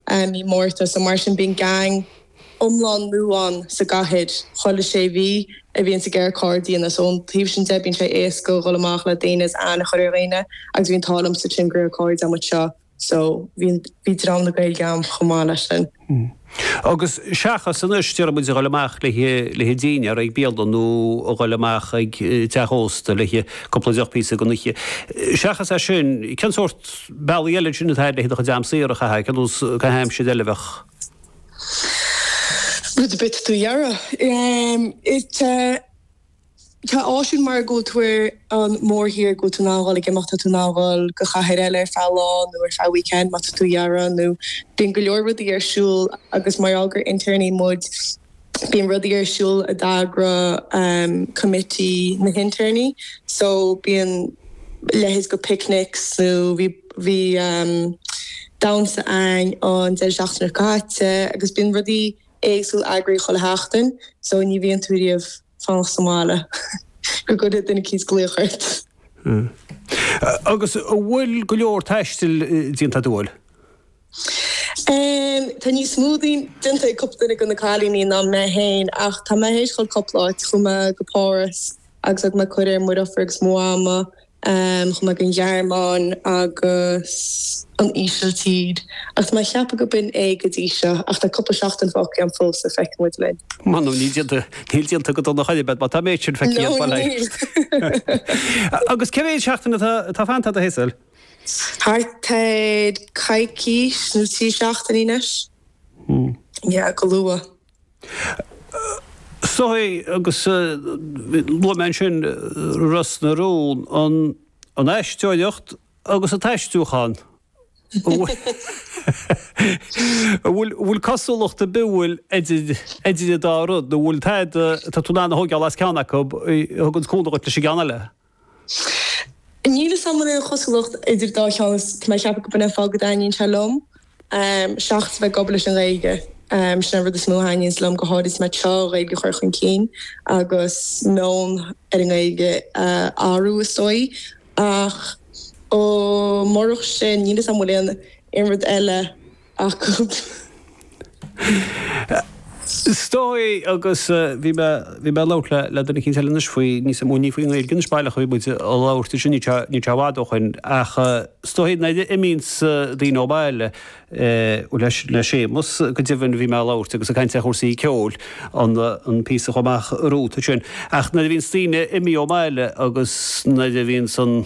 i mí Márta so mar sin bíonn gang iomlán nua ann sa gcathair chuile sé mhí a bhíonns ag iarraidh cairde nua so ón taobh sin de bíonn sé éasca a dhul amach le daoine is aithne a chur ar dhaoine agus bhí an t-ádh liomsa trí mo chuid cairde amuigh anseo so bhí bhí dream na Gaeilge a'm chomh maith leis sin. Agus seachas anois déarfaidh muid a dhul amach le le haghaidh dinnéar ag bialann nó a dhul amach ag teach ósta le haghaidh cúpla deoch píosa den oíche seachas é sin cén sórt bealaí eile ansin atá le do chuid am saor a chaitheamh, ar nós caitheamh aimsire eile a bheadh. Rud ar bith atá tú dhá iarraidh. Tá áisiúil mar go bhfuil tú ar an mórthír, go bhfuil tú in ann dhul ag imeacht, tá tú in ann dhul go chathair eile ar feadh lá nó ar feadh weekend má tá tú dhá iarraidh nó bíonn go leor rudaí ar siúl agus mar gheall gur intéirní muid, Bíonn rudaí ar siúl a eagraíonn coimití na hintéirní so bíonn leithéid de picnics nó bhí damhsa a'inn an deireadh seachtaine caite agus bíonn rudaí éagsúil eagraithe chuile sheachtain so ní bhíonn tú riamh ag fanacht sa mbaile go gcuirfidh duine éicint glaoch ort. Agus an bhfuil go leor taistil déanta a'd, an bhfuil? Tá níos mó déanta ag cúpla duine de na cailíní ná mé féin ach tá mé théis dhul cúpla áit. Chuaigh mé go Páras agus thug mé cuairt ar mo dheirfiúr agus Mama. Chuaigh mé go an Ghearmáin agus an Ísiltír agus tá mé ag ceapadh go b'in é go dtí seo ach tá cúpla seachtain fágtha agam fós so feicfidh muid linn. Mh'anam níl déanta níl déanta go dona ar chor ar bith a'd má tá an méid sin feicthe a'd, an bhfuil. Agus cé mhéid seachtain atá fanta do hé sil? Thart ar coicís nó trí seachtaine anois. Yeah, go luath. Is dóigh agus luaigh mé ansin Ros na Rún, an aisteoireacht agus an t-aistriúchán. An bhfuil cosúlacht ar bith ann idir an dá rud nó an bhfuil tada atá tú in ann a thógáil as ceann acu, a thugann cúnamh dhuit leis an gceann eile? Níl fhios a'm an bhfuil aon chosúlacht idir an dá cheann is tá mé ag ceapadh go b'in an fáth go dtaitníonn sé liom. Seachas bheith ag obair leis an nGaeilge, sin an rud is mó a thaitníonns liom, go háirid is mé ag traíáil an Ghaeilge a chur chun cinn agus meon ar an nGaeilge a athrú is dóigh. Ach murach sin, níl fhios a'm bhfuil aon aon rud eile. Is dóigh, agus bhí mé, bhí mé ag labhairt le, le duine éicint eile anois faoi, níos amuigh, ní faoin nGaeilge anois baileach a bhí muid ag labhairt ansin ní, níl sé i bhfad ó shoin ach is dóigh nuair a imíonns daoine ó bhaile, bhuel leis, le Séamus go deimhin bhí mé ag labhairt agus ag caint ar chúrsaí ceoil an, an píosa a chuaigh amach romhat ansin ach nuair a bhíonns daoine imithe ó bhaile agus nuair a bhíonns an,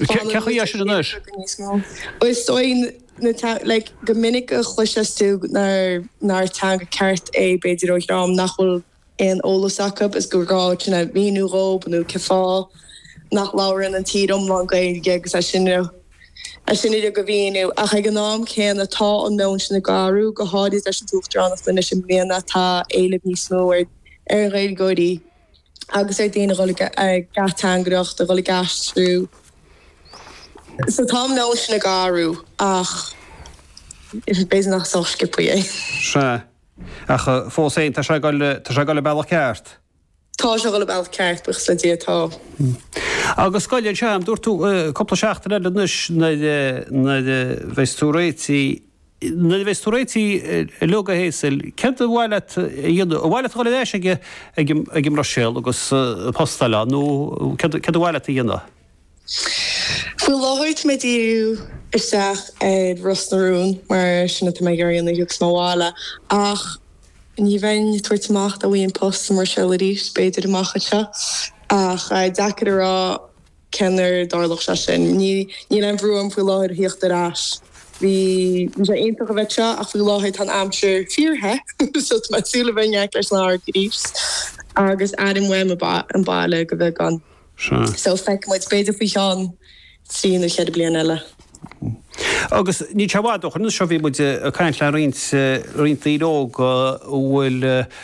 Fála rud a chéile beagán níos mó. Is dóigh na teanga, like, go minic a chloiseas tú nár teanga ceart é b'fhéidir ó dhream nach bhfuil aon eolas acu is gur gá dúinne a mhíniú dhób nó cén fáth nach labhrann an tír iomlán Gaeilge agus é sin uilig a mhíniú. Ach ag an am céanna tá an meon sin ag athrú, go háirid leis an tUachtaránacht anois i mbliana, tá éileamh níos mó ar ar Ghaeilgeoirí. agus ar daoine a dhul ag ateangaireacht, a dhul ag aistriú so tá an meon sin ag athrú ach b'fhéidir nach sách sciobthaí é. Sea. Ach fós féin tá sé ag dul, tá sé ag dul an bealach ceart. Tá sé ag dul an bealach ceart buíochas le Dia, tá. Agus gabh i leith anseo, dúirt tú cúpla seachtain eile anois nuair a bheas tú réitithe, Nuair a bheas tú réitithe uilig, a Hazel, céard ar mhaith leat a dhéanamh? Ar mhaith leat dul ar ais ag an mBruiséil agus post a fháil ann nó céard ar mhaith leat a dhéanamh? Faoi láthair tá mé ag díriú isteach ar Ros na Rún mar sin atá mé ag iarraidh anois agus mo bhaile ach ní bheinn ag tabhairt amach dá bhfaighinn post sa mBruiséil arís b'fhéidir amach anseo ach deacair a rá. cén uair a dtarlódh sé sin? Níl aon bhrú orm faoi láthair a thíocht ar ais. Bhí sé iontach a bheith anseo ach faoi láthair tá an aimsir fíor-the so tá mé ag súil le bheith in aice leis an bhfarraige arís agus airím uaim an baile de bheagán. So feicfidh muid, b'fhéidir faoi cheann trí nó ceithre bliana eile. Agus níl sé i bhfad ó shoin, anseo bhí muid ag caint le roinnt daoine óga a bhfuil